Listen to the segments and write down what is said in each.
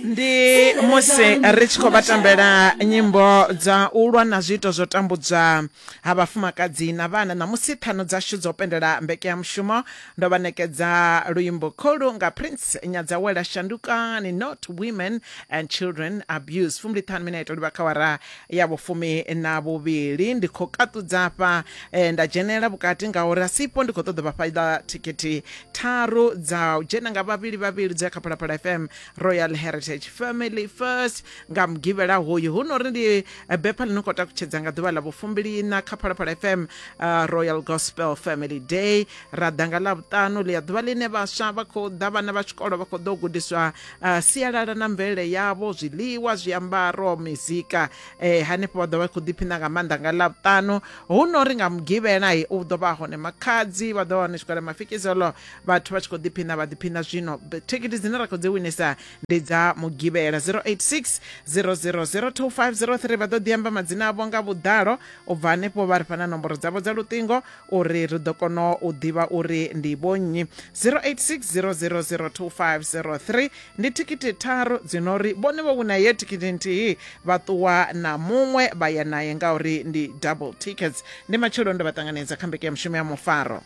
ndi musi ri tshi khou vha tambela nyimbo dza u lwa na zwiito zwo tambudzwa ha vhafumakadzi na vhana na musi ṱhanu dzashu dzo pendela mbekeyamushumo ndo vha nekedza luimbo kholu nga prince nyadzawela shandukani not women and children abuse fumbili ṱhanu minete livha kha wara ya vhufumi na vhuvhili ndi khou kaṱudza afha eh, nda dzhenela vhukati ngauri asipo ndi khou ṱoḓa vha fhaila thikhithi tharu dza u dzhena nga vhavhili vhavhili dzo ya kha phalaphala fm royal heritage family first nga mugivhela hoyu hu no uri ndi eh, bepha ḽi no khou takutshedza nga ḓuvha ḽa vhufumbiliina kha phalaphala fm uh, royal gospel family day ra ḓa nga ḽa vhuṱanu ḽi ya ḓuvha ḽine vhaswa vha khou ḓa vhana vha tshikolo vha khou ḓo gudiswa uh, sialala na mvelele yavho zwiḽiwa zwiambaro mizika eh, hanefho vha ḓo vha khou ḓiphina nga maanḓa nga ḽavhutanu hu no ri nga mugivhela u ḓo vha hone makhadzi vha ḓo hone zwikole mafikizelo vhathu vha tshi khou ḓiphina vha ḓiphina zwino thikhithi dzine ra khou dzi winisa ndi dza mugivhela 086 0002503 vha ḓo ḓi amba madzina avho nga vhuḓalo u bva hanefho vha ri fha na nomboro dzavho dza luṱingo uri ri ḓo kona u ḓivha uri ndi vhonnyi 0860002503 ndi thikhithi tharu dzi no ri vhone vho wina ye thikhithi nthihi vha ṱuwa na muṅwe vha ya naye ngauri ndi double tickets ndi matshelo ndo vha ṱanganedza kha mbeke ya mushumo ya mufaro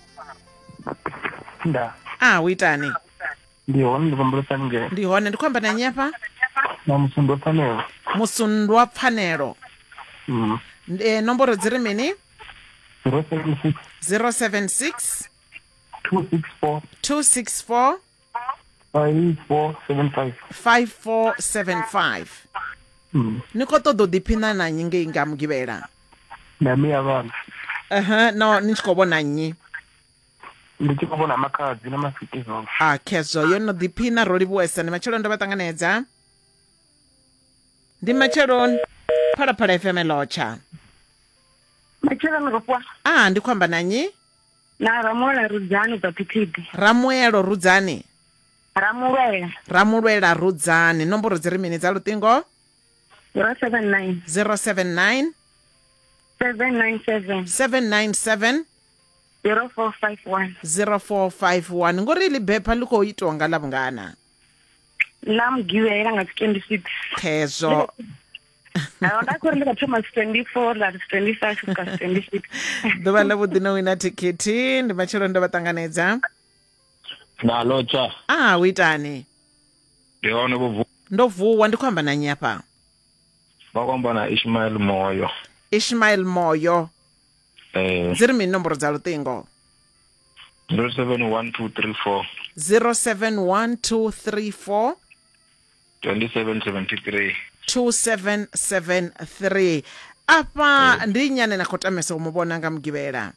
nda a u itani ndi hone ndi vhumbulesa haningei ndi hone ndi khou amba na nnyi afha na musundwa pfanelo musundwa pfanelo mm. e, nomboro dzi ri mini 076 076 264 264 5475 5475 Mm. ni khou ṱoḓa u ḓiphina na nnyi ngei nga mugivhela na mi ya vhana ehe no ni tshi khou vhona nnyi ndi tshi khou vhona makhadzi na masikizolo a khezwo yo no ḓiphina ro livhuwesa ni matshelo ndo vha ṱanganedza ndi matsheloni phalaphala fm lotsha matsheloni rufwa a ndi khou amba na nyi na ramulwela rudzani ubva phithidi ramuelo rudzani ramulwela ramulwela rudzani nomboro dzi ri mini dza luṱingo 079 079 797 797 0451 0451 ngori ḽi bepha ḽi khou itiwa nga ḽa vhungana ḽa mugivhela nga dzi 26 khezwo nda khori ndi kha thoma 24 ḽa 25 u ka 26 ḓuvha ḽa vhuḓi no wina thikhithi ndi matshelo ndo vha ṱanganedza na lotsha a ah, u itani ndi hone vho vuwa ndo vuwa ndi khou amba na nnyi afha vha khou amba na ishmael moyo ishmael moyo eh. dzi ri mini nomboro dza luṱingo 071234 071234 2773 2773 afha ndi nnyi ane na khou tamesa u mu vhona nga mugivhela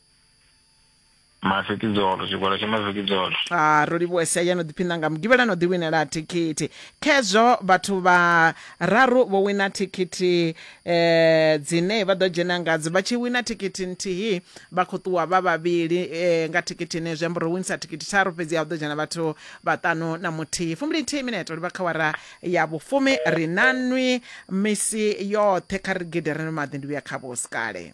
mafikidzolo tshigwada tsha mafikidzolo a ro livhuwa sia ya no ḓiphina nga mugivhela no ḓiwinela thikhithi khezwo vhathu vha raru vho wina thikhithi eh dzine vha ḓo dzhena ngadzo vha tshi wina thikhithi nthihi vha khou ṱuwa vha vhavhili eh nga thikhithi ne zwi amba uri winisa thikhithi tharu fhedzi ya hu ḓo dzhena vhathu vhaṱanu na muthihi fumbili nthihi mineto livha kha wara ya vhufumi ri na nwi misi yoṱhe kha ri gidere no maḓi ndi vhuya kha vhusikale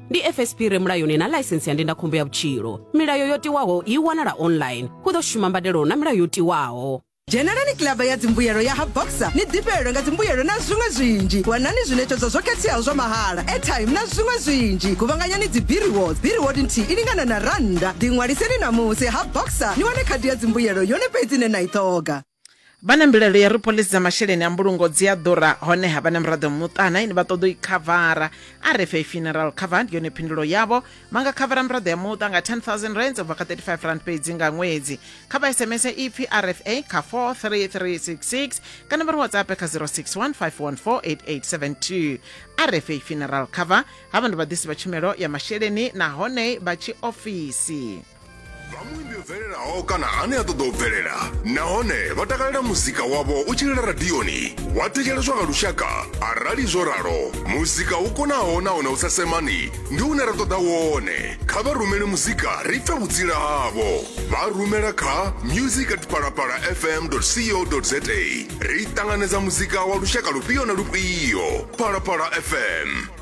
ndi fsp re mulayoni na ḽaisensi ya ndindakhombo ya vhutshilo milayo yo tiwaho i wanala online hu ḓo shuma mbadelo na milayo yo tiwaho dzhenelani kilaba ya dzimbuyelo ya ha boxer ni ḓifhelelwe nga dzimbuyelo na zwiṅwe zwinzhi wanani zwiṋetshedzo zwo khetheaho zwa mahala airtime na zwiṅwe zwinzhi guvhanganyani dzibiriwod biriwod nthihi i lingana na rannda ḓiṅwaliseni ṋamusi ha boxer ni wane khadi ya dzimbuyelo yone fhedzi ine na i ṱhoga Vha na mbilaelo ya uri phoḽisi dza masheleni a mbulungo dzi a ḓura honeha vha na miraḓo muṱa na ine vha ṱoḓa u i khavara. RFA Funeral Cover ndi yone phindulo yavho. Vha nga khavara miraḓo ya muṱa nga 10000 rands u bva kha 35 rand fhedzi nga ṅwedzi. Kha vha SMS ipfi RFA kha 43366 kana vha ri WhatsApp kha 0615148872. RFA Funeral Cover havha ndi vhaḓisi vha tshumelo ya masheleni nahone vha tshiofisi. vhamuimbi bvelelaho kana ane a ṱoḓa u bvelela nahone vha takalela muzika wavho u tshilela radioni wa thetsheleswa nga lushaka arali zwo ralo muzika u konaho nahone u sa semani ndi une ra ṱoḓa wone kha vha rumele muzika ri pfe vhutsila havho vha rumela kha music at palapala fm co za ri ṱanganedza muzika wa lushaka lufhio na lufhio palapala fm